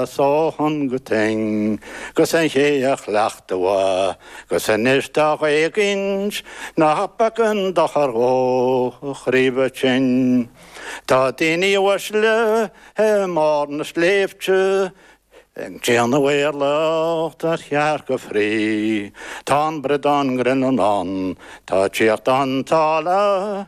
'S ó thonn go tuinn, 'gus an té a chleacht an mhaith, 'gus anois tá dá dh'éagaint, ní beag an dochar dhó a chroí bheith tinn. Tá daoine uaisle i mbarr na sléibhte ag déanamh éirleachta ar chearca fraoigh, tá an bradán grinn ann ag tíocht ón tsáile.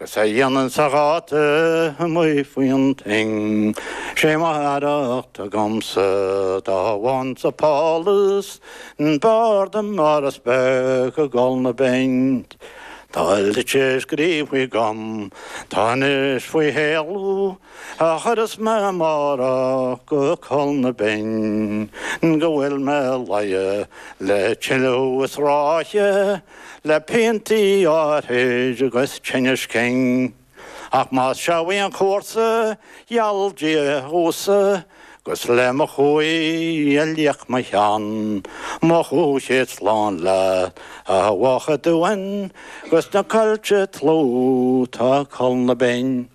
Agus a dhéanann sa ghátar amuigh faoin tuinn, Sé m'fhearacht agamsa dá bhfaighinnse pálás, Ab fhearr liom áras beag i gCúl na Binn. Tá litir scríofa agam, tá anois faoi shéala. A chuirfeas mé amárach go Cúl na Binn Go bhfuil mé 'mo luí le tuilleadh is ráithe Le piantaí áirthid 'gus tinneas cinn Ach más seo é an cúrsa gheall Dia dhomhsa 'Gus le mo chumhaidh a liath mo cheann Mo chúig chéad slán leat a Bhoth a' Dúin 'Gus na coillte dlúth tá i gCúl na Binn.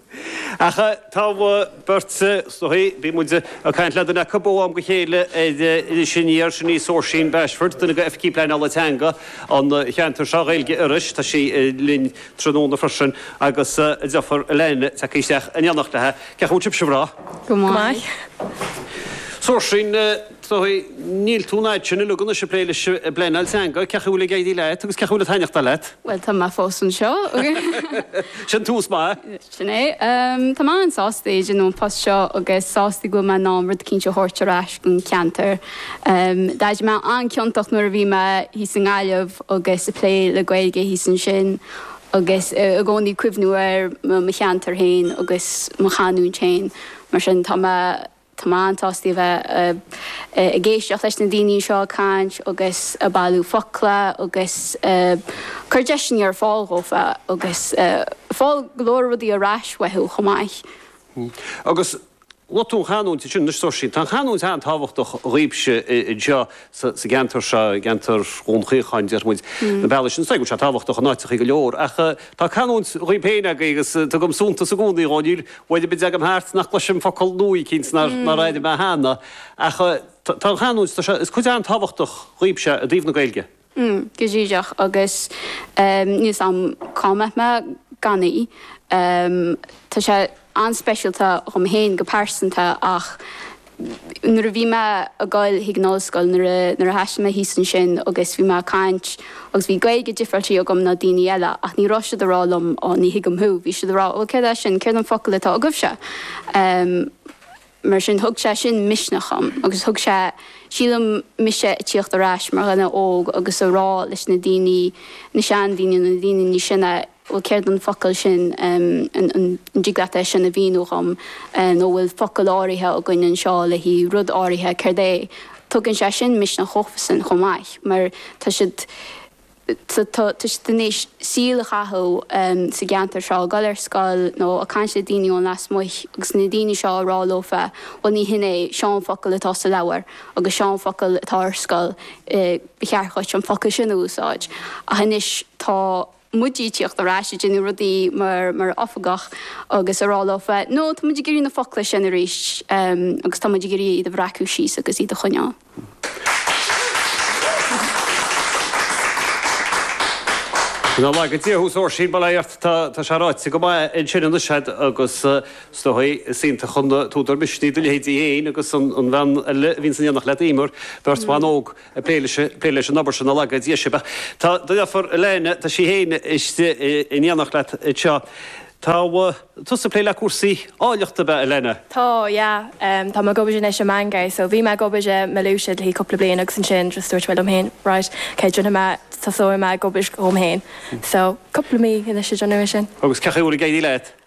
Ach tá beirt anseo, bíonn muid ag caint le duine acu ó am go chéile, sin í ar sin í Seoirsín Bashford, duine d'Oifigigh Pleanála Teanga an cheantair seo, Gaeilge Iorrais, tá sí linn tráthnóna freisin agus déanfar Elaine teacht isteach in éineacht léi. Cén chaoi a bhfuil sibh? Go breá. Go maith. Seoirsín. tá, níl tú an fhad sin uilig anois ag plé leis an bpleanáil teanga, cén chaoi a bhfuil ag éirí leat agus cén chaoi a bhfuil sé ag taitneachtáil leat. Bhuel, tá mé fós anseo. Sin tús maith. Sin é. Tá mé an-sásta é a dhéanamh, an post seo, agus sásta go bhfuil mé in ann rud éicint a thabhairt ar ais don cheantar. D'airigh mé an-ciontach nuair a bhí mé thíos i nGaillimh agus ag plé le Gaeilge thíos ansin agus i gcónaí ag cuimhniú ar mo cheantar féin agus mo chanúint féin. Mar sin, tá mé. Tá mé an-sásta a bheith ag éisteacht leis na daoine seo ag caint agus ag bailiú focla agus ag cur deiseanna ar fáil dhófa agus ag fáil go leor rudaí ar ais uathu chomh maith. Agus luaigh tú an chanúint ansin, anois Seoirsín, tá an chanúint an-tábhachtach dhaoibhse anseo. sa gceantar seo, i gceantar Dhún Chaocháin, déarfaidh muid, na bealaigh sin. Is dóigh go bhfuil sé tábhachtach in áiteachaí go leor, ach tá canúint dhaoibh féin agaibh agus tugaim suntas i gcónaí dhó. Níl uair ar bith a dtagaim thart nach gcloisim focal nua eicínt nár airigh mé cheana, ach tá an chanúint, tá sé, is cuid an-tábhachtach dhaoibhse i dtaobh na Gaeilge. Mm, go díreach, agus níl 's agam cá mbeadh mé gan í. Tá sé. an-speisialta dhom féin go pearsanta ach nuair a bhí mé a' goil chuig an ollscoil, nuair a, nuair a thaistil mé thíos ansin agus bhí mé a' caint agus bhí Gaeilge dhifreáilte agam ná daoiní eile ach ní raibh siad a' rá liom oh ní thuigim thú, bhí siad a' rá oh céard é sin, céard an focal atá agaibhse? Ehm mar sin thug sé sin misneach dhom agus thug sé, sílim, mise a' tíocht ar ais mar dhuine óg agus a' rá leis na daoiní, na seandaoiní nó na daoiní níos sine, bhuel céard an focal sin, an dtig leat é sin a mhíniú dhom nó an bhfuil focal áirithe againn anseo le rud áirithe, céard é? Tugann sé sin misneach dhófasan chomh maith mar tá siad, tá siad in éis a saol a chaitheamh sa gceantar seo, ag dul ar scoil nó ag caint le daoine ó lasmuigh agus na daoine seo ag rá leofa bhuel ní hin é, seo an focal atá sa leabhar agus seo an focal atá ar scoil, ba cheart dhuit an focal sin a úsáid ach anois tá. muid ag tíocht ar ais ag déanamh rudaí mar mar oifigeach agus ag rá leofa no, tá muid ag iarraidh na focla sin arís agus tá muid ag iarraidh iad a bhreacadh síos agus iad a choinneáil. Nár laga Dia thú is ar son m'anam tá tá sé ráite go maith ansin anois agat agus is dóigh is iontach an t-údar misnigh do leithéide fhéin agus an bhean eile a bhíonns in éineacht leat Emer, beirt bhan óg. ag plé leis an obair sin nár laga Dia sibh. Ach do dheirfiúr Elaine, tá sí féin istigh in éineacht leat anseo. Tá tusa ag plé le cúrsaí áilleachta, ab ea, Elaine? Tá, yeah. Tá mé ag obair anois i mBangor, so bhí mé ag obair i Malusia le haghaidh cúpla bliain agus ansin just dúirt mé liom féin right, okay, déanfaidh mé, tosóidh mé ag obair dhom féin. So cúpla mí anois ag déanamh é sin. Agus cé chaoi a bhfuil ag éirí leat?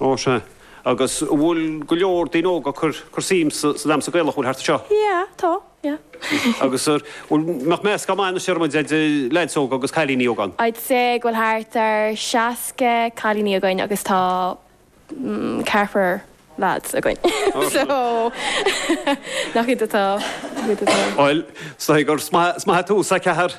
Ó sea. Agus an bhfuil go leor daoine óga ag cur suim sa damhsa Gaelach an bhfuil thart anseo? Yeah, tá, yeah. Agus ar, bhfuil, mbeadh meascán maith anois ar an méid de leaids óga agus cailíní óga ann? I'd say go bhfuil thart ar seasca cailíní againn agus tá ceathrar leaids againn. Ó sea. So, nach iad atá, nach iad atá. Bhuel, is dóigh gur maith an rud an ceathrar.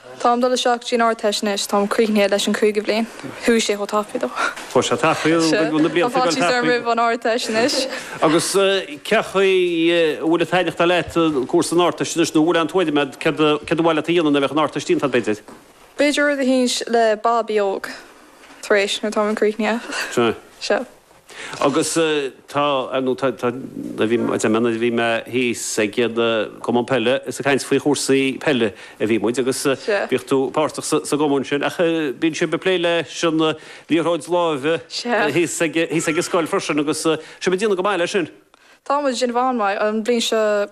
Táim dul isteach dtí'n Ardteist anois, táim críochnaithe leis an cúigiú bhliain. Chuaigh sé chomh tapaidh. Chuaigh sé tapaidh, an bhfuil na blianta ag dul tapaidh? Tá faitíos orm roimh an Ardteist anois. Agus cé chaoi a bhfuil ag taitneachtáil leat cúrsa an Ardteist anois, nó an bhfuil aon tuairim a'd céard a ba mhaith leat a dhéanamh nuair a bheadh an Ardteist déanta a'd, b'fhéidir? B'fhéidir rud eicínt le babaí óga, tar éis, nuair táim críochnaithe. Sea. Agus tá, ar ndóigh, tá, tá, bhí, déarfainn nuair a bhí mé thíos agaibh i gCumann Peile is ag caint faoi chúrsaí peile a bhí muid agus Sea. bíodh tú páirteach sa, sa gCumann sin ach bíonn sibh ag plé leis an liathróid láimhe Sea. thíos ag, thíos ag an scoil freisin agus sibh ag déanamh go maith leis sin. Tá muid ag déanamh an-mhaith an bhliain seo.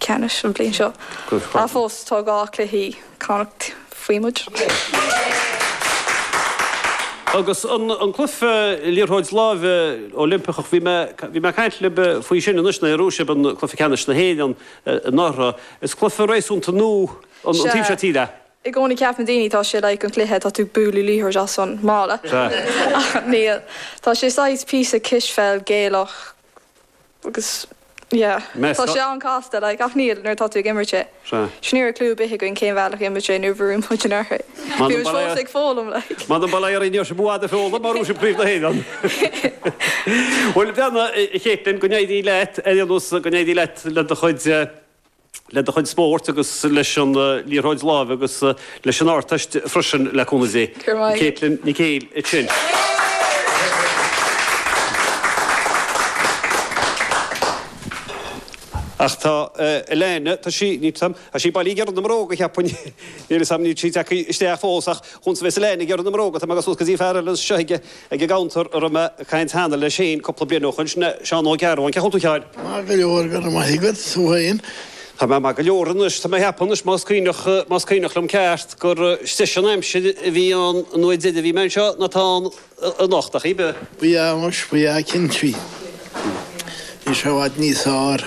ceannais an bhliain seo. Ach fós, tá dhá chluiche Connacht faoi muid. Agus an cluiche liathróid láimhe Oilimpeach, bhí mé, bhí mé ag caint libh faoi sin anois, ná shroich sibh an cluiche ceannais na hÉireann anuraidh. Is cluiche réasúnta nua sa taobh seo tíre. I gcónaí ceapann daoine tá sé like an cluiche, tá tú bualadh liathróid as an mballa. Ach níl. Tá sé saghas píosa cispheil Gaelach. Agus, yeah. Tá sé an-casta, like, ach níl, nuair atá tú ag imirt é. Sea. Sea, ní raibh clue ar bith againn cén bhealach a d'imir sé nuair a bhfuair muid an liathróid. Bhí muid fós ag foghlaim, like. M'anam, bail oraibh, ní raibh sibh i bhfad á fhoghlaim, mar sin príomh na hÉireann. Bhuel, go breá, a Chaitlín, go n-éirí leat, ar aon nós, go n-éirí leat le do chuid, eh, le do chuid spóirt agus leis an liathróid láimhe agus leis an Ardteist freisin, le cúnamh Dé. Caitlín Nic Éil. Ach tá Elaine, tá sí, níl 's agam, tá sí bailithe ag iarraidh na mbróga, cheapfainn. Níl 's agam, níl sí tagtha isteach fós ach chúns a bheidh, Elaine, ag iarraidh na mbróga, tá mé ag siúl go dtí fear eile anseo ag. Ag an gcuntar a raibh mé ag caint cheana le Shane cúpla bliain ó shoin, sin Seán Ó Gearbháin. Cén chaoi a bhfuil tú a Sheáin? Maith go leor, go raibh maith agat, tú féin? Tá mé maith go leor anois. Tá mé ag ceapadh anois, más cuimhneach, más cuimhneach liom ceart, gur deise an aimsir a bhí ann an uair dheiridh a bhí mé anseo ná atá ann anocht, ach cibé. Bhí anois, bhí cinnte, bhí. Bhí sé i bhfad níos fearr.